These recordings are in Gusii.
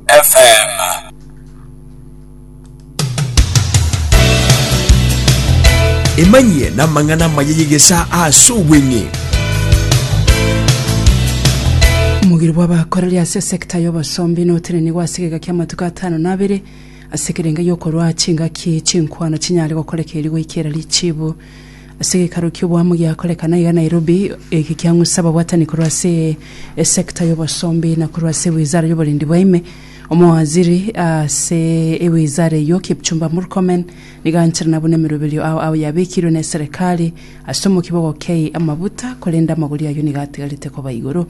FM. Emanyie na amang'ana amaya y'egesa ase obweng'e. Omogiri bw'abakoreri ase esekta y'obosombi notenenigwe ase egeka kia amatuko atano na abere ase ekerengo gi'okorwa chingaki chinkwana chinyare gokoreka erio goikera richibu Ase gekaro kioboamo giakorekana iga Nairobi, eke kiang'usa ababwatani korwa ase esecta y'obosombi na korwa ase ewizara y'oborendi bwa ime. Omowaziri ase ewizara eyio Kipchumba Murkomen nigo ancherana buna emeroberio ao ao yabekirwe ne serikali ase omokibogo kei amabuta korende amagori ayio nigo atigarete koba igoro.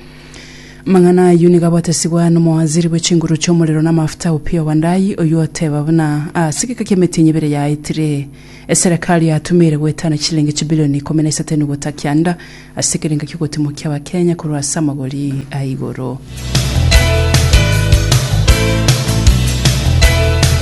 Amang'ana ayio nigo agotesigwa nomowaziri bwe chinguru chi'omorero na amafuta Opiyo Wandayi oyio oteba buna ase egeka ki'emetienyi ebere yaetire Eserekari yatumeire goetana chilingi chibilioni ikomi na isato enugota kianda ase ekerengo ki'ogotimokia Abakenya korwa ase amagori a igoro.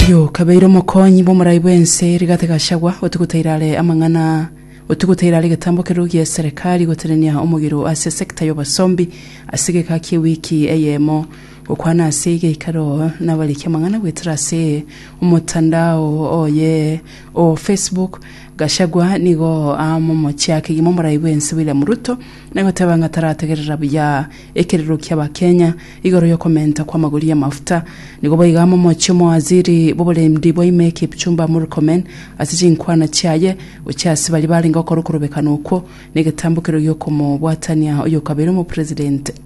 Yo kabeire omokonyi bw'omorai bw'ense Rigathi Gachagua otigutaira are amang'ana otigutaira are egetambo kerwo gi'eserekari gotenenia omogiro ase sector y'obosombi ase egeka ki'ewiki eyemo Gokwana ase egeikaro nabariki amang'ana goetera ase omotandao oye o Facebook, Gachagua nigo aa momochiaki gima omorai bwensi William Ruto, nagoteba ng'a tarategerera buya ekerero kia Abakenya igoro yokomenta kw'amagori y'amafuta. Nigo boigo aa momochie omowaziri bw'oborendi bwa ime Kipchumba Murkomen ase chinkwana chiaye gochia ase baria barenge gokora okorobekana okwo negetambukero giokomobwatania oyokabere omopresident.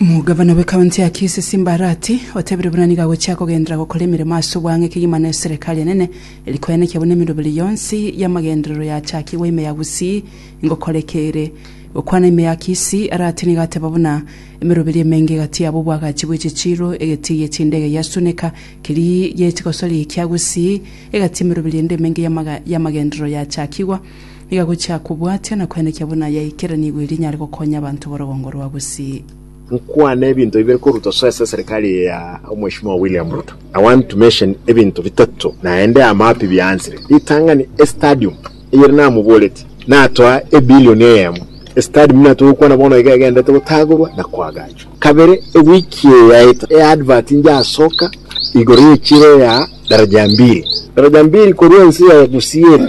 Omogavana bwe county ya Kisii Simba Arati otebire buna nigo agochia kogenderera gokora emeremo ase obwange kegima na eserekari enene eri koenekia buna emeroberi yonsi y'amagenderero yachakigwa ime ya Gusii ingokoreka ere gokwana ime ya Kisii Arati nigo ateba buna emeroberi emenge egatiaba obwagachi bwe chichiiro egetii gie chindege gia Suneka keria giaetigosori kia Gusii egatia emeroberi ende emenge y'amagenderero yachakigwa Iga gochia kobwatia na koenekia buna yaikeranigwe eria inyare gokonya abanto b'orogongo rwa Gusii. Nkwane ebinto bibere koruta soe ase eserikari eye ya Omweshimiwa William Ruto. I want to mention ebinto bitato naende amapi biaanchire. Ritang'ani estadium eyere namoboreti natoa ebilioni eyemo. Estadium niyo natwe gokwana bono iga egenderete gotagorwa na koagachwa. Kabere ewiki eye yaeta eadvert njasoka igoro y'echiro ya Daraja Mbili. Daraja Mbili korwa ense ya Gusii ere.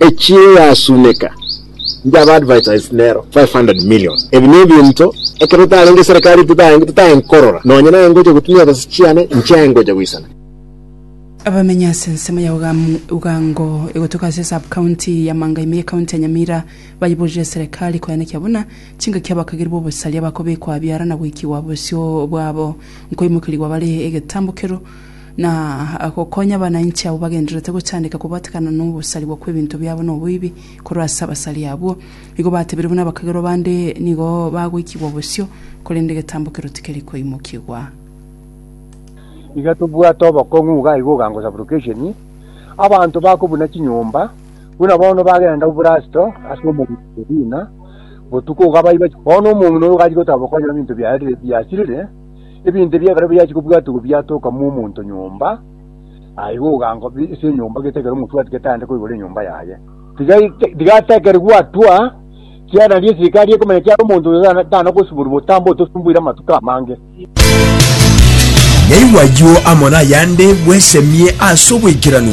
Ekiagera yasuneka njaba advertised nero 500 million. Ebi nebinto ekero tarenge serikali titae nkorora nonye naye ngocha gotumia ebesa chiane inche aye ngocha goisana. Abamenyi ase ensemo ya Ugango egotuka ase sub-county ya Mangaime ye county ya Nyamira bayiborire serikali koyanekia buna chingaki abakageri b'obosaria bakobekwa abiara na goikigwa bosio bwabo nkoimokerigwa bare egetambo kerwo na gokonya abananchi abwo bagendererete gochandeka kobatekana nogosarigwa kw'ebinto biabo na oboibi korwa ase abasari abwo. Nigo batebire buna abakagerwa bande nigo bagoikigwa bosio, korende egetambo kero tikeri koimokigwa. Iga tobwate obokong'u iga aiga ogango supplication abanto bako buna chinyomba buna bono bagenda obrasto ase omogwekwa Medina botuko iga baiba bono omong'ina oyo gachia goteba bokonya ebinto biarire biasirire Ebinto ebio ekero biachia kobwatigwa biatokamwa omonto nyomba, aye igo ogango bi- ase enyomba getekere omotwati getande koigora enyomba yaye. Tiga ite- tiga atekere gwatwa, kiagera nario eserikari ekomenya kiare omonto oyo tana- tana gosiborwa botambe otosumbuire amatuko amange. Naigwa ayio amo nayande bwesemie ase oboikeranu.